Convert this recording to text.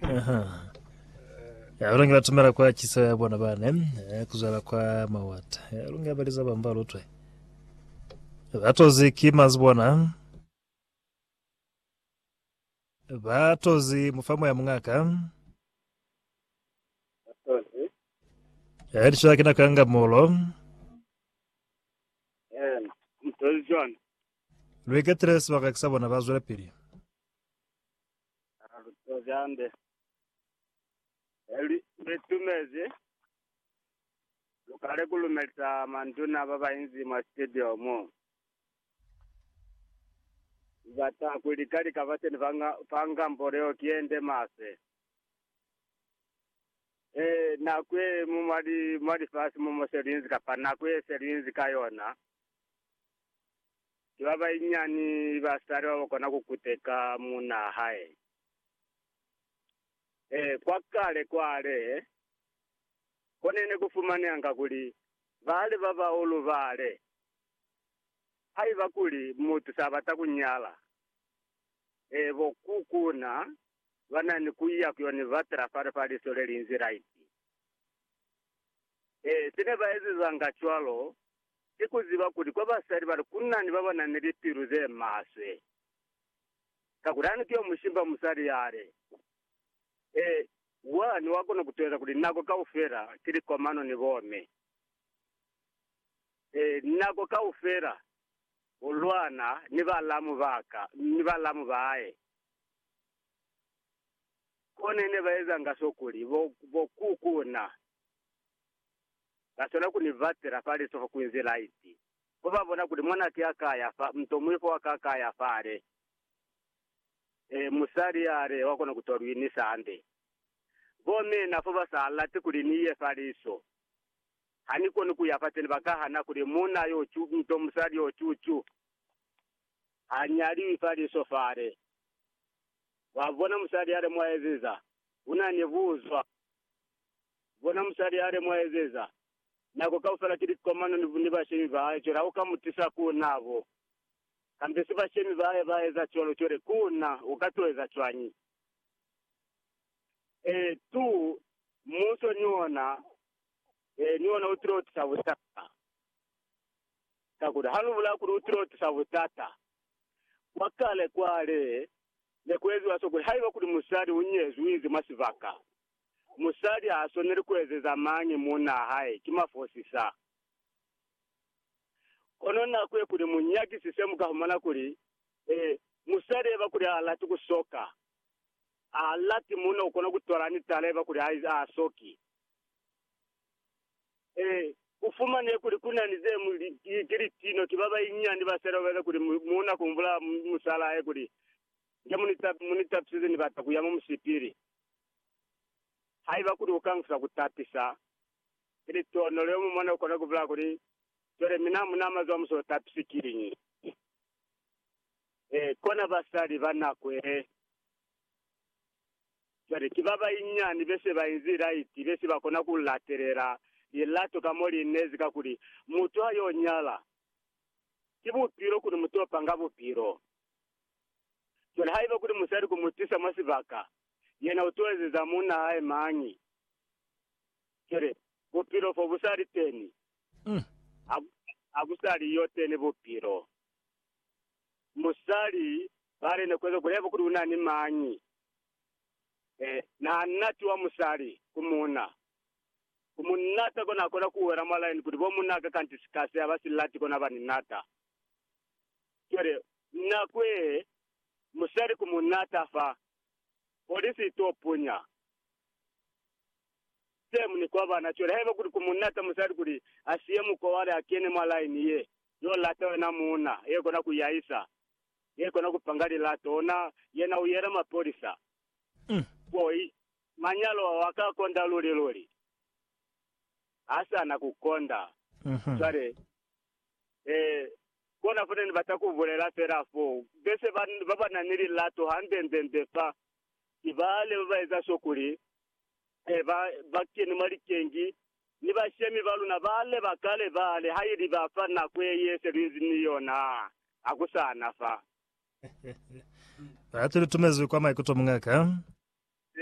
Aha. Ya lungi batumela kwa chiso ya bona bane eh, kuzwala kwa mawata ya lungi abaliza bamba lutwe batozi ki mazi bona batozi mufamo ya mungaka Tozi. ya lishola kina kanga molo Yen. Tozi John. lweketele sebaka kisa bona ba zwela pili Aa, lu tozi hande. He lu, lu itumezi. Lu kale ku lumelisa manduna ba ba inzi mwa studio mo. Lu bata ku lika lika bateni ba nga, fa ngambo leo ki ye nde maswe. E, nako ye mu mwa li, mwa lifasi mo mo se lu inzi, kapa nako ye se lu inzi ka yona, Ki ba banyinyani basali ba ba kona ku kuteka muuna wa hae. Ee, kwa kale kwale, ko ne ne ku fumanehanga kuli bali ba bahulu bale, haiba kuli mutu sa bata ku nyala, ee, bo kukuna ba na ni ku ya ku yo ni batela fale fa liso le linzi laiti. Ee, se ne ba ezezanga cwalo ki ku ziba kuli kwa basali bale ku na ni ba ba na ni lipilu ze maswe. Kakuli ani ki yo mushimba musali yale? Ee, wa ni wa kona ku teza kuli nako kaufela ki likomano ni bomme. Ee, nako kaufela u lwana ni balamu ba ka, ni balamu ba hae. Kone ne ba ezanga so kuli bo, bo ku ku na. Ba swana ku ni batela fa lisoho ku inzi laiti. Ku ba bona kuli mwanaki a ka ya fa, mutomuwi fo a ka ka ya fale. Ee, musali yale wa kona ku to lwi ni sande. Bo mina fo ba sa lati kuli ni ye fa liso. Ha ni koni ku ya fateni, ba ka hana kuli muuna yo cu nto, musali yo cu cu. Ha nyaliwi fa liso fale. Wa bona, musali yale mwa eziza, una ni buzwa. Bona musali hali mu ezeza. Nako kaufela ki likomano ni, ni bashemi ba hae, cwale ha u ka mu tisa ku na bo. Kambe si bashemi ba hae ba eza cwalo, cwale ku na u ka to eza cwañi? Ee, tu, muso ni ona, ee, ni ona u tilo tisa butata. Kakuli ha lu bula kuli u tilo tisa butata, kwa kale kwale ne ku eziwa so kuli haiba kuli musali u nyezwi, u ize mwa sibaka, Musali ha swaneli ku ezeza mañi muunaa hae, ki mafosi sa. Kono n'a kuye kuli mu nyakisise, mu ka humana kuli, ee, musali eba kuli ha lati ku soka, ha lati muuna u kona ku twala ni tala eba kuli ha ha soki. Ee, ku fumanehe kuli ku na ni ze mu li, ki, ki litino, ki ba banyinyani ba sele ba eza kuli mu, muuna ku mbula musala hae kuli, Nge mu ni, mu ni tapisize, ni bata ku ya mwa musipili. Haiba kuli ukangusa kutapisa, ili tonolo yomumona ukona kubulaa kuli, Cwale mina hamuna mazo amuso utapisi kiñi? Ee, kona basali banakwele. Cwale, ki babainyani bese bainzi laiti bese bakona kulatelela lilato ka mo liinezi, kakuli mutu hayonyala, ki bupilo kuli mutopanga bupilo. Cwale haiba kuli musali ku mu tisa mwa sibaka, yena u t'o ezeza munna hae mañi? Cwale, Bupilo fo bu sa li teni. Ha, ha ku sa li yo teni Bupilo. Musali, ba li, Ne ku eza kuli haiba kuli u na ni mañi, e, na nati wa musali ku munna, ku mu nata, kono a kona ku wela mwa laini kuli bo munna ka kanti sikasi ha ba si lati, kono ha ba ni nata. Cwale, na kwehe musali ku munata fa polisi ito punya same ni kwa bana. Cwale haiba kuli ku munata musali kuli asiye muko wale akene mwa line ye yo lata yona muuna ye kona ku yaisa, ye kona ku panga lilato, ona yena u yela mapolisa. Boy, manyalo ao aka konda luli luli. Hasana ku konda. Cwale, Ee, kona fo ne ni bata ku bulela fela fo. Bese ba, ba ba na ni lilato hande-nde-nde fa ki bale ba ba eza so kuli e, ba, ba keni mwa likengi, ni bashemi ba luna bale ba kale bale, ha ili ba fa nako ye ye se lu inzi ni yona ha ku sa na fa. Batu, lu tumezwi kwa maikuto, muñaka.